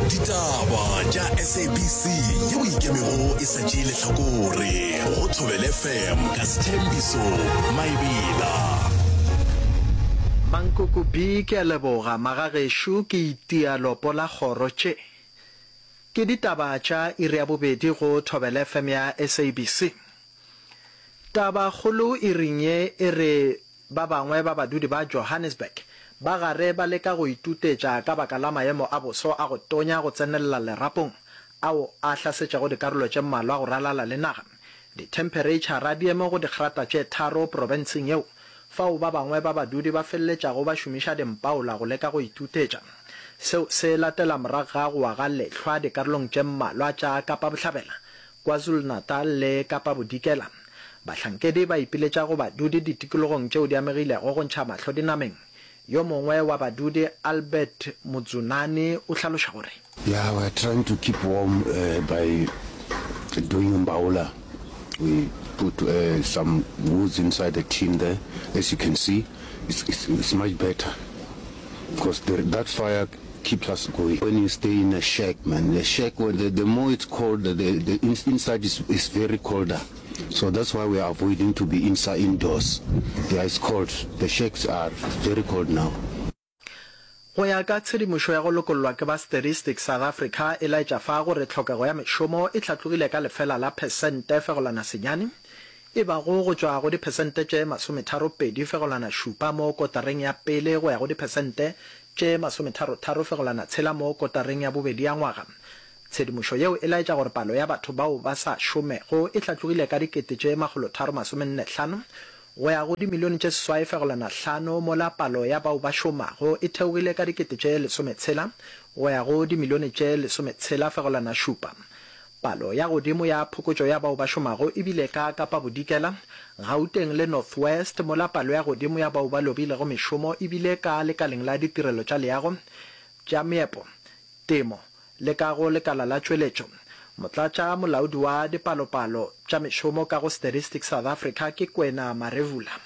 ditaba tša sabc yeo e ikemego e sa tšee lehlakore go thobele fm ka sethembiso maebela Mankoko B ke a leboga magagešo ke itia lopo la kgoro tše ke ditaba tša iri ya bobedi go thobele fm ya sabc taba kgolo iring ye e re Ba bangwe ba badudi ba Johannesburg ba gare ba leka go itutetša ka baka la maemo a boso a go tonya go tsenelela lerapong ao a hlasetšego dikarolo tše mmalwa go ralala le naga. Dithempereitšhara di eme go digrata tše tharo profenseng yeo, fao ba bangwe ba badudi ba feleletšago ba šomiša dimpaola go leka go itutetša. Seo se latela morago ga go wa ga lehlwa dikarolong tše mmalwa tša Kapa Bohlabela, KwaZulu-Natal le Kapa Bodikela, bahlankedi ba ipiletša go badudi ditikologong tšeo di amegilego go ntšha mahlo dinameng. Yo mongwe wa badudi, Albert Mudzunani o hlaloša gore. Yeah, we are trying to keep warm by doing mbawula, we put some woods inside the tin there, as you can see it's much better because that fire. keeps us going when you stay in a shack man a shack where the the more it's cold the the the inside is is very colder so that's why we are avoiding to be inside indoors yeah it's cold the shacks are very cold now. Go ya ka tshedimošo ya go lokollwa ke ba Statistics South Africa e laetša fa gore tlhokego ya mešomo e hlatlogile ka lefela la phesente fegolwana senyane e bago go tšwa go diphesente tše masometharo pedi fegolwana šupa mo kotareng ya pele go ya go diphesente tše masometharo-tharo fegolana tshela mo kotareng ya bobedi ya ngwaga. Tshedimošo yeo e laetša gore palo ya batho bao ba sa šomego e hlatlogile ka dikete tše makgolotharo masomenne hlano go ya go dimilione tše seswai fegolana hlano mola palo ya bao ba šomago e theogile ka dikete tše lesometshela go ya go dimilione tše lesometshela fegolana šupa. Palo ya godimo ya phokotšo ya bao ba šomago e bile ka Kapa Bodikela, Gauteng le North West, mola palo ya godimo ya bao ba lobilego mešomo e bile ka lekaleng la ditirelo tša leago, tša meepo, temo le ka go lekala la tšweletšo. Motlatša molaodi wa dipalopalo tša mešomo ka go Statistics South Africa ke Kwena Marevula.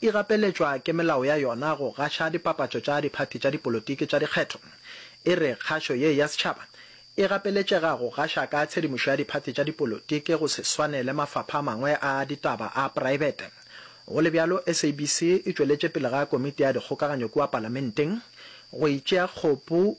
e gapeletšwa ke melao ya yona go gaša dipapatšo tša diphathi tša dipolotiki tša dikgetho, e re kgašo ye ya setšhaba e gapeletšega go gaša ka tshedimošo ya diphathi tša dipolotiki go se swane le mafapha a mangwe a ditaba a praebete. Go le bjalo, SABC e tšweletše pele ga Komiti ya Dikgokaganyo kua Palamenteng go e tšea kgopu,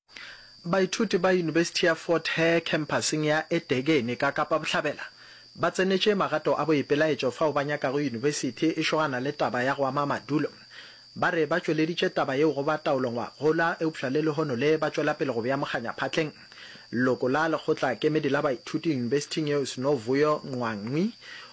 Baithuti ba Yunibesithi ya Fort Hare khempasseng ya eThekwini ka Kapa Bohlabela ba tsenetše magato a boipelaetšo fao ba nyakago yunibesithi e šogana le taba ya go ama madulo. Ba re ba tšweleditše taba yeo go ba taolongwagola eupša le lehono le ba tšwela pele go bea mokganya phatleng. Leloko la lekgotla kemedi la baithuti yunibesithing yeo Snovuyo Nqwangwi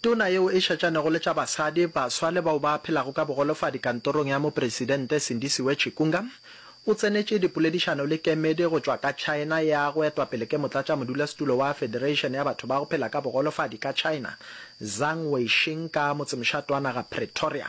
Tona yeo e šatšanego le tša basadi, baswa le bao ba phelago ka bogolofadi kantorong ya Mopresidente Sindisiwe Chikunga o tsenetše dipoledišano le kemedi go tšwa ka China ya go etwa pele ke motlatšamodulasetulo wa Federation ya batho ba go phela ka bogolofadi ka China Zhang Weishing ka motsemošate wa naga Pretoria.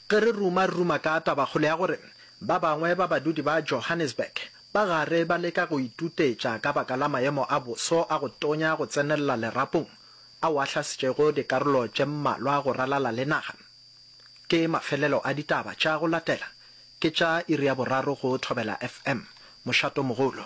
Ge re ruma-ruma ka tabakgolo ya gore ba bangwe ba badudi ba Johannesburg ba gare ba leka go itutetša ka baka la maemo a boso a go tonya go tsenelela lerapong ao a hlasetšego dikarolo tše mmalwa go ralala le naga, ke mafelelo a ditaba tša go latela, ke tša iri ya boraro go Thobela FM, Mošatomogolo.